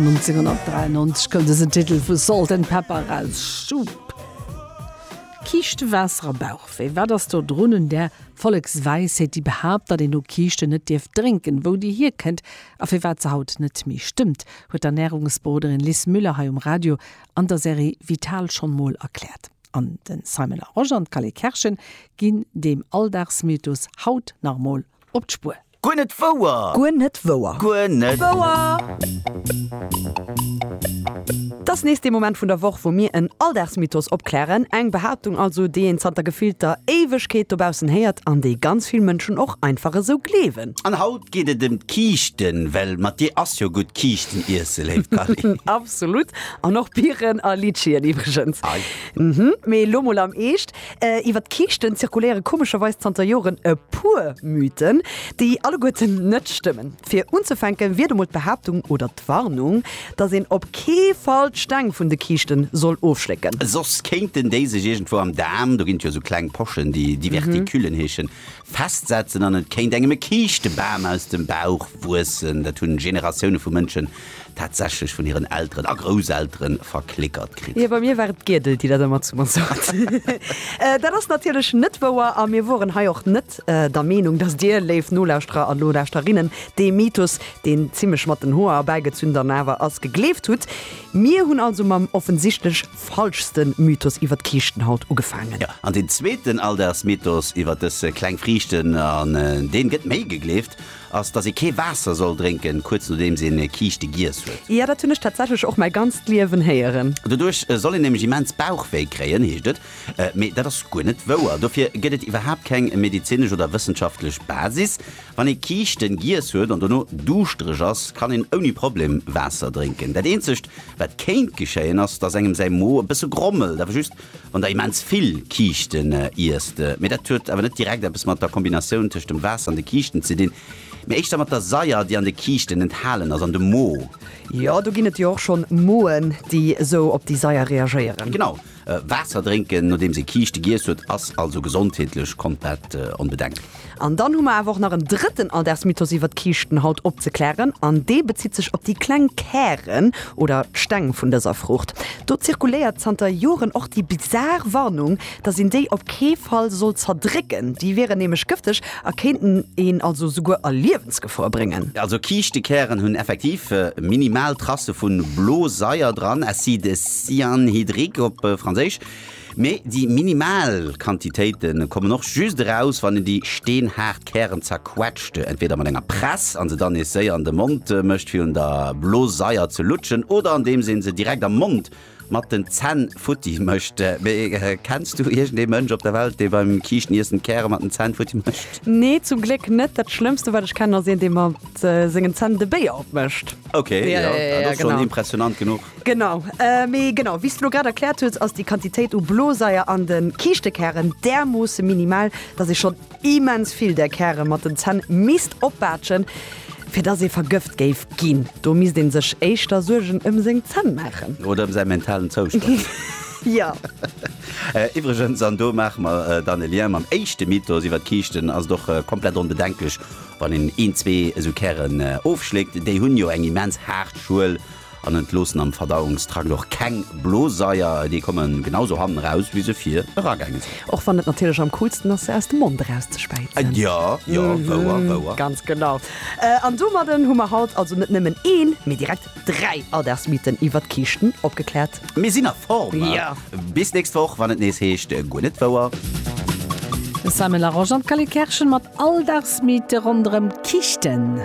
1993 koum dësen Titel vu Salt and Pepper eraus, Soup. Kiischte Waasser a Bauchwéi, wat ass do drun un där Volleksweisheet, déi behaapt, datt een no Kiischte net dierf drénken? Wou déi hierkënnt a firwat se haut net méi stëmmt, huet d'Ernärungsberoderin Lis Müller hei um Radio an der Serie Vital schonn mol erkläert. An de Simon Larosche an d'Kalle Kerschen ginn deem Alldagsmythos haut nach emol op d'Spuer. Guer net wouer! Guer net wouer! Guer net wouer! Et ass nees dee Moment vun der Woch, wou mir en Alldagsmythos opklären. Eng Behaaptung also, déi een zanter gefillter Éiwegkeet dobaussen héiert an déi ganz vill Mënschen och einfach esou gleewen. An haut geet et ëm d'Kiischten, well mat dir ass jo gutt Kiischten iesse, léif Dany. Absolut! An och Biren a Litschien iwwregens. Mee elo mol am Eescht, Iwwer d'Kiischten zirkuléiere komescherweis zanter Joren e puer Mythen, déi alleguerten net stëmmen. Fir unzefänke wier do mol d'Behaaptung oder d'Warnung, datt een op kee Fall d'Steng vun de Kiischte soll ofschlécken. Soss kéinten déi sech iergendwou am Daarm, do ginn et jo esou kleng Pochen, déi Diverticulen heeschen, festsetzen an et kéint engem e Kiischtebam aus dem Bauch wuessen. Dat hunn Generatioune vu Mënschen tatsächlech vun hiren Elteren a Grousselteren verklickert kritt. Jo, bei mir war et d'Giedel, déi dat ëmmer zu mer sot. Dat ass natierlech net wouer a mir woren hei och net der Meenung, dass Dir, léif Nolauschterer a Nolauschterinnen, dee Mythos, deen zimlech mat den Hoer erbäigezünn dann awer ass, gegleeft hutt. Mir hunn also mam offensichtlech. falschste Mythos iwwer d'Kiischtenhaut ugefaangen. An den zweeten Alldagsmythos iwwer dës kleng Friichten, an dee gëtt méi gegleeft, ass, dass ee kee Waasser soll drénken, kuerz nodeems een Kiischte giess huet. Jo, dat hunn ech tatsächlech och mäi ganzt Liewen héieren. Doduerch soll een nämlech immens Bauchwéi kréien, heescht et. Mee dat ass guer net wouer. Dofir gëtt et iwwerhaapt keng medezinesch oder wëssenschaftlech Basis. Wann ee Kiischten giess huet an dono duuschtereg ass, kann een ouni Problem Waasser drénken. Dat eenzegt wat kéint geschéien ass, dass engem säi Mo e bësse grommelt, awer just wann der immens vill Kiischten iesst. Mee dat huet awer net direkt eppes mat der Kombinatioun tëscht dem Waasser an de Kiischten ze dinn, mee éischter mat der Saier, déi an de Kiischten enthalen ass an dem Mo. Jo, do ginn et jo och schonn Moen, déi esou op déi Saier reagéieren. Genau. Waasser drénken nodeems ee Kiischte giess huet ass also gesondheetlech komplett onbedenkt. An dann hu mer awer och nach en drëtten Alldagsmythos iwwert Kiischten haut opzeklären an dee bezitt sech op déi kleng Kären oder Steng vun dëser Fruucht. Do zirkuléiert zanter Joren och déi bizar Warnung, dass een déi op kee Fall soll zerdrécken, déi wieren nämlech gëfteg A kéinten een also souguer a Liewensgefor bréngen. Also Kiischtekären hunn effektiv minimal Tracë vun Blosaier dran, acide cyanhydrique op franséisch, mee déi minimal Quantitéite kommen och just eraus wann een déi steenhaart Kären zerquetscht, entweeder mat enger Press an se dann nees séier an de Mond mécht fir un der Blosaier ze lutschen, oder andeems een se direkt am Mond mat den Zänn futti mécht. Mee kenns du iergend ee Mënsch op der Welt, dee beim Kiischteniissen d'Käre mat den Zänn futti mécht? Nee, zum Gléck net. Dat schlëmmste wat ech kennen ass een dee mat sengen Zänn de Béier opmécht. Ok, jo, dat ass schonn impressionant genuch. Genau. Mee genau wéi s de lo grad erkläert hues, ass déi Quantitéit u Blosaier an de Kiischtekären därmoosse minimal, datt ee schonn. Immens vill där Käre mat den Zänn misst opbaatschen, fir dass ee vergëft géif ginn. Do misst ee sech éischter Suergen ëm seng Zänn maachen. Oder ëm säi mentalen Zoustand. Iwwregens, an do maache mer dann e Lien mam éischte Mythos iwwer d'Kiischten, ass et och komplett onbedenklech, wann een een, zwee esou Kären ofschléckt. Déi hunn jo eng immens haart Schuel. An entloossen am Verdauungstrakt och keng Bloseier, déi komme genau sou hannen eraus wéi se vir eragaange sinn. Och wann et natierlech am coolsten ass se aus dem Mond erauszeschwäizen. Jo, jo, wouer, wouer. Ganz genau. An domadden hu mer haut also net nëmmen een, mee direkt dräi Alldagsmythen iwwert Kiischten opgekläert. Mir sinn a Form! Jo! Bis nächst Woch wann et nees heescht Guer net wouer. De Simon Larosche an d'Kelly Kerschen mat Alldagsmythe ronderëm d'Kichten.